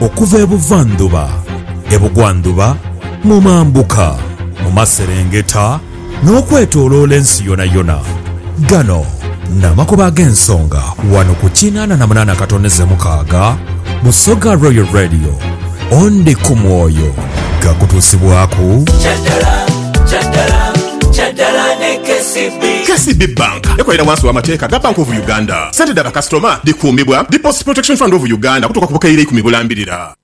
Okuva ebuvandhuba, ebugwandhuba, mu mambuka, mu maserengeta, n'okwetoloola ensi yonayona, gano n'amakubo ag'ensonga wano ku kinaana na munaana katoneze mukaaga Busoga Royal Radio. Onde ku mwoyo gha kutuusibwaku. KCB Bank ekolera wansi wa mateeka ga Bank of Uganda. Sente dha bakasitoma dhikuumibwa Deposit Protection Fund of Uganda okutuuka ku bukaire ikumi bulambirira.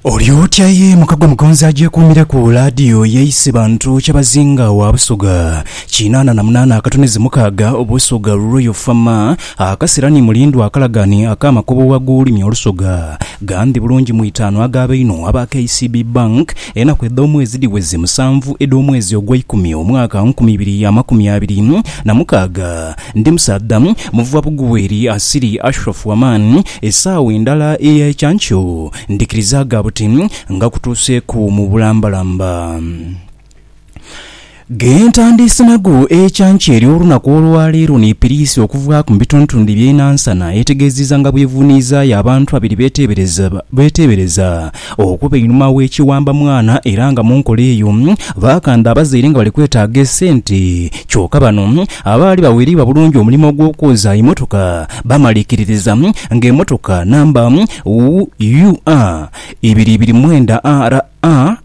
Oli otya ye muka gwe mugonzi agyekuumire ku laadiyo y'eisi bantu Kyabazinga wa Busoga kinaana na munaana akatunizi mukaaga Obusoga Royal Farmer Akasira ni mulindwa akalagane ak'amakobo gh'ag'olulimi olusoga. Gandhi bulungi mu itaanu ag'aba einho aba KCB Bank, enaku edh'omwezi dhiweze musanvu edh'omwezi ogw'eikumi omwaka nkumi ibiri amakumi abiri na mukaaga. Ndi musaadha muva bugweri asiri Ashraf Waman. Esaawa endala eya ekyankyo ndhikirizaaga buti nga kutuuseeku mu bulambalamba. Gentandiise nago ekyankya ery'olunaku olwaleero ni piriisi okuvaaku mu bitundutundu bye Nansana etegeziza nga bwevuniizaayo abantu abiri betebereza okuba einhuma w'ekiwamba mwana era nga munkola eyo bakanda abazaire nga bali kwetaaga esente kyoka bano abaali bawereibwa bulungi omulimo ogw'okwoza emotoka bamalikiririza nga emotoka namba UUR ibiri ibiri mwenda RA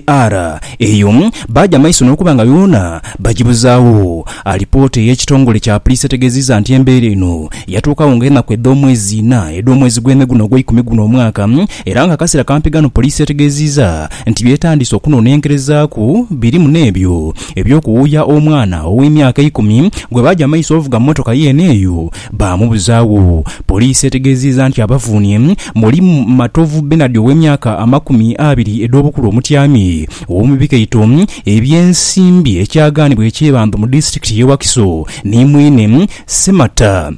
AR, Eyo baagya amaiso n'okuba nga yoona bagibuzaagho. Alipoota ey'ekitongole kya Puliisi etegeziiza nti embeera eno yatuukagho nga enaku edh'omwezi ina edh'omwezi gwe me guno ogweikumi guno omwaka era nga akaseera kampi ghano Puliisi etegeziiza nti by'etandiise okunonenkerezaaku birimu n'ebyo eby'okuwuuya omwana ow'emyaka eikumi gwe baagya amaiso ovuga mmotoka yeene eyo Baamubuzaawo. Poliisi etegeeziiza nti abavuunye mulimu Matovu Bernard ow'emyaka amakumi abiri edh'obukulu omutyami ow'omu bikaito eby'ensimbi ekyagaanibwa e Kyebando mu disitulikiti y'e Wakiso ni mwine Ssemata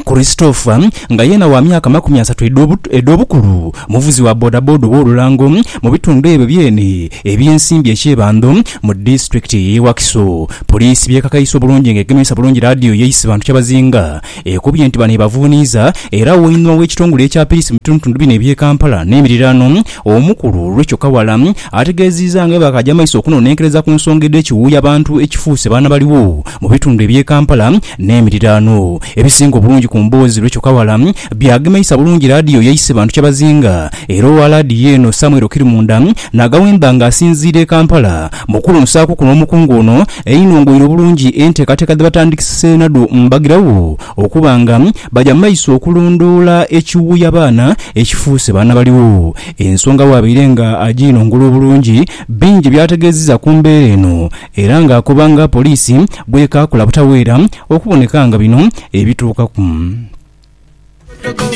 Christopher nga yeena wa myaka amakumi asatu edh'obukulu, muvuzi wa bodaboda ow'olulango mu bitundu ebyo byene. Ebyensimbi e Kyebando mu disitulikiti y'e Wakiso poliisi byekakaise obulungi nga egemesa bulungi laadiyo ye Isibantu Kyabazinga ekubye nti bano ebavuuniiza era wainua w'ekitongole ekya piriisi mu bitundutundu bino eby'e Kampala n'emiriraano omukulu Recho Kawala ategeeziiza nga bwebakaja maiso okunonenkereza ku nsonga edh'ekiwuuya bantu ekifuuse baana baliwo mu bitundu eby'e Kampala n'emiriraano ebisinga obulungi ku mboozi Recho Kawala Byagemeisa bulungi laadiyo yaise bantu kyabazinga era owa laadiyo eno Samuel Kirimunda n'agawemba nga asinziira e Kampala. Mu kuwunsaaku kuno omukungu ono einhongoire obulungi enteekateeka dhe batandikise nadho mbagirawo okuba nga baja mu maiso okulondoola ekiwuuya abaana ekifuuse baana baligho. Ensonga bwabaire nga agiinongola obulungi bingi by'ategeeziza ku mbeera eno era nga akoba nga poliisi bw'ekaakula butaweera okuboneka nga bino ebituukaku.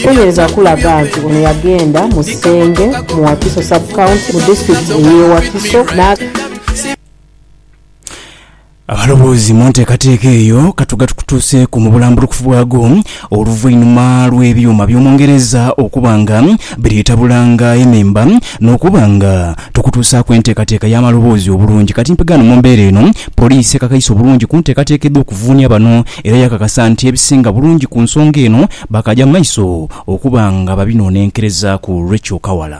Tuyinza kulaga nti ono yagenda mu Senge mu Wakiso Sub-County mu disitulikiti ey'e Wakiso na. Abalowoozi mu nteekateeka eyo ka tugatukutuuseeku mu bulambulukufu bwago oluvainuma lw'ebyuma by'omu Ngereza okuba nga biri etabulanga ememba n'okuba nga tukutuusaaku enteekateeka y'amaloboozi obulungi. Kati mpegaano mu mbeera eno, Poliisi ekakaise obulungi ku nteekateeka edh'okuvuunia bano Era yakakasa nti ebisinga bulungi ku nsonga eno baakaaja mu maiso okuba nga babinonenkerezaaku olw'ekyokawala.